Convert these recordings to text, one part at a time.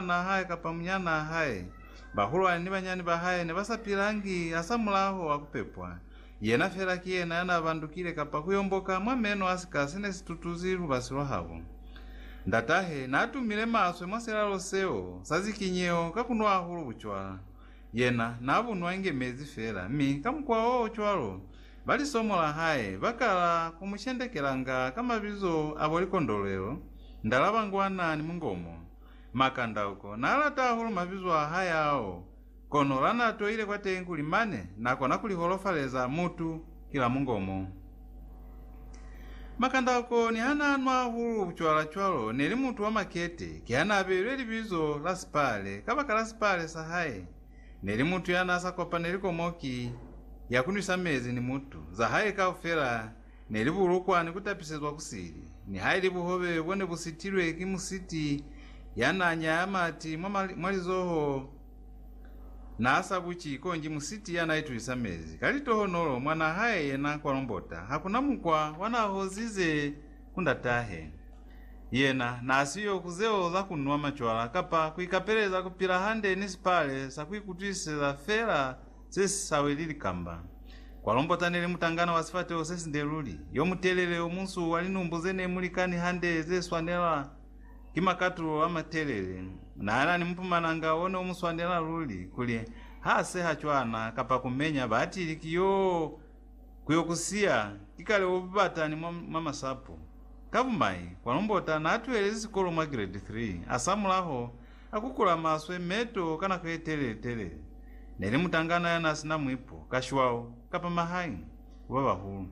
mwanaa hae kapa munyanaa hae, bahulwani ni banyani ba hae ne ba sa pilangi hasamulaho wa ku pepwa. Yena feela ki yena ya naa bandukile kapa ku yomboka mwa meno a sika se ne si tutuzi lubasi lwa habo. Ndat'ahe naa tumile maswe mwa silalo seo sa zikinyeho ka ku nwa hahulu bucwala. Yena naa bu nwa inge mezi feela, mi ka mukwa o cwalo, ba lisomo la hae ba kala ku mu shendekelanga ka mabizo a bo likondolwelo, ndalabangwana ni mungomo. Makandauko na lata hahulu mabizo a hae ao, kono lana toile kwa teñi kuli mane na kona kuli holofaleza mutu kila mungomo. Makandauko niha na nwa hahulu bucwala cwalo neli mutu wa makete, kiha na beilwe libizo la sipale kabakala sipale sa hae neli mutu yana sa kopaneli komoki ya ku nwisa mezi ni mutu, za hae kaufela, Ne li bulukwa ni ku tapisezwa ku sili. Nihaili buhobe bo ne bu sitilwe ki musiti ya n'a nyaya mati mwa lizoho n'a sa buci, konji musiti ya n'a itulisa mezi ka litohonolo mwa n'a hae yena kwa lombota, ha ku na mukwa wa n'a hozize ku ndat'ahe. Yena n'a si yo ku zeo za ku nwa macwala kapa ku ikapeleza ku pila hande ni sipale sa ku ikutwisiseza fela Se si sa weleli kamba. Kwa Lombota ne li mutangana wa sifateho se sinde luli, yo mutelele, yo munsu, wa linumbu ze ne mu likani hande, ze swanela ki makatulo a matelele. Na na ni mupumalanga o ne u mu swanela luli, kuli ha seha cwana kapa ku menya, baatili ki yo ku yo ku siya, ki kale o bata ni mwa, mwa masapo. Ka bumai, Kwa Lombota na tuhelezi sikolo mwa grade three, a samulaho, A kukula maswe meto ka nako ye telele-telele. Ne li mutangana ya n'a si na mwipo, kashwao, kapa mahae ku ba bahulu.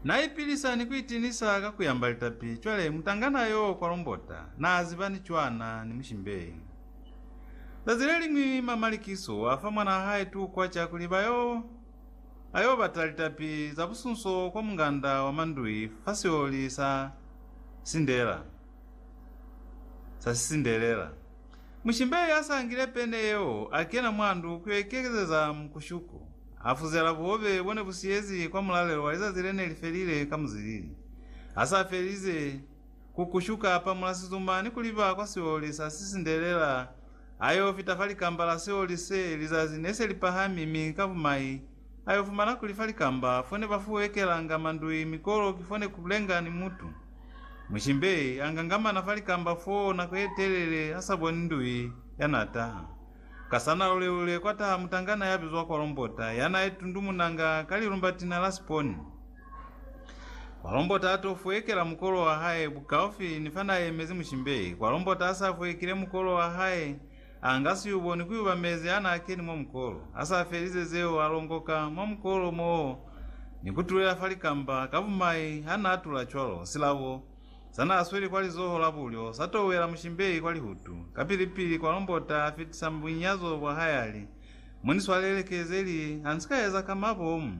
N'a ipilisa ni ku itinisa ka ku yamba litapi. Cwale, mutangana yo kwa Lombota n'a ziba ni cwana ni mushimbei. Zazi le liñwi m'a Malikiso a fa mwan'a hae tukwa ca kuli ba yo, a yo bata litapi za busunso kwa munganda wa mandui fa sioli sa Sindela. sa sisindelela. Mushimbeli ya sa ngile pene yeo a kena mwa ndu ku yo ikekezeza mukushuku. A fuzela buhobe bo ne bu siyezi kwa mulalelo wa lizazi le ne li felile ka muzilili. Ha sa felize ku kushuka, a pamula sizuma ni ku liba kwa sioli sa sisindelela a yo fita fa likamba la sioli se lizazi ne se li pahami mi ka bumai Ayo fumana kuli fa likamba fone ba fuwekelanga mandui mi kolo ki fone ku lenga ni mutu. Mushimbe a nga ngamana fa likamba fo nako ye telele a sa boni ndui ya n'a taha. Ka sa na lule-lule kwa taha mutangana ya bizwa Kwalombota ya n'a itundumunanga ka lilumbatina la siponi. Kwalombota a t'o fuwekela mukolo wa hae bukaufi ni fa n'a yemezi Mushimbe. Kwalombota a s'a fuwekile mukolo wa hae, A nga si u boni kuiba mezi ha n'a keni mwa mukolo, a sa felize zeo a longoka mwa mukolo moo ni ku tulela fa likamba ka bumai ha n'a tula cwalo, silabo sa n'a sweli kwa lizoho la bulyo sa touela mushimbeyi kwa lihutu, kapili-pili kwa lombota a fitisa bunyazo bwa hae a li, Mu ni swalele ke ze li ha ni si ka eza ka mabomu.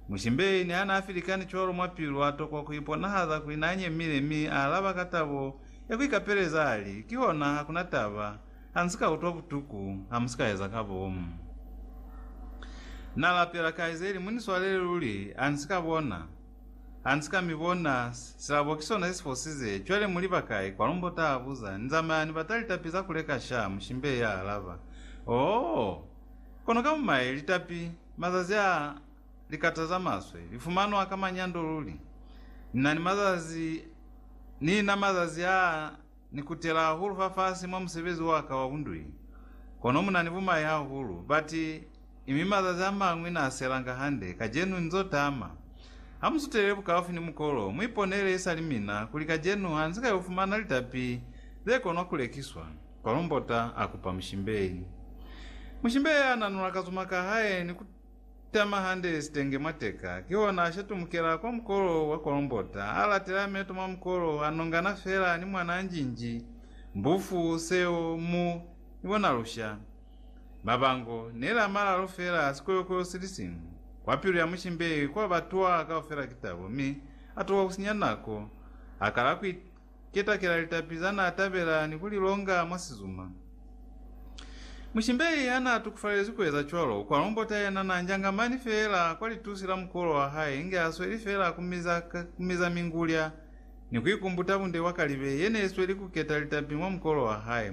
Mushimbeyi ni ha n'a filikani cwalo mwa pilu a tokwa ku iponahaza kuli n'a nyemile mi a alaba ka tabo ya ku ikapeleza a li, Kihona ha ku na taba, ha nsi ka utwa butuku, ha mu si ka eza ka bomu. Na lapela, Kaizeli, mu ni swalele luli, ha nsi ka bona, ha nsi ka mi bona, silabo ki sona se si fosize, cwale mu liba kai? Kwalumbo ta abuza, Ni zamaya ni bata litapi za ku leka sha? Mushimbei ya alaba, Oo! Kono ka mumaye, litapi, mazazi a, Likata za maswe li fumanwa ka manyando luli. Ni na ni mazazi, ni na mazazi a ni kutela hahulu fafasi mwa musebezi wa ka wa bundui. Kono mu na ni bumai hahulu, bati, mi mazazi a mañwi na selanga hande. Kacenu nzo tama. Ha mu sutelele bukaufi ni mukolo, mu iponele isali mina kuli kacenu ha ni si ka yo fumana litapi ze konwa ku lekiswa. Kwalombota a kupa mushimbei. Mushimbei a nanula kazuma ka hae ni ku. Tama hande sitenge mwa teka, kihona a shatumukela kwa mukolo wa kolombota, a latela meto mwa mukolo, a nongana fela ni mwanaa njinji, mbufu, seo, mu, ni bona lusha. Mabango, neli a malalu fela a sikoyokoyo sili siñwi. Kwa pilu ya mushimbeyi kwa ba twaa kaufela ki tabo, mi a tuka ku sinya nako, a kala ku Ketakela litapi za n'a tabela ni ku li longa mwa sizuma. Mushimbei ha n'a tukufalelezwi ku eza cwalo, u kwa lombota yena n'a njanga mani feela kwa litusi la mukolo wa hae inge a sweli feela ku miza, ku miza mingulya ni ku ikumbuta bunde bwa kalibe ye n'e sweli ku keta litapi mwa mukolo wa hae.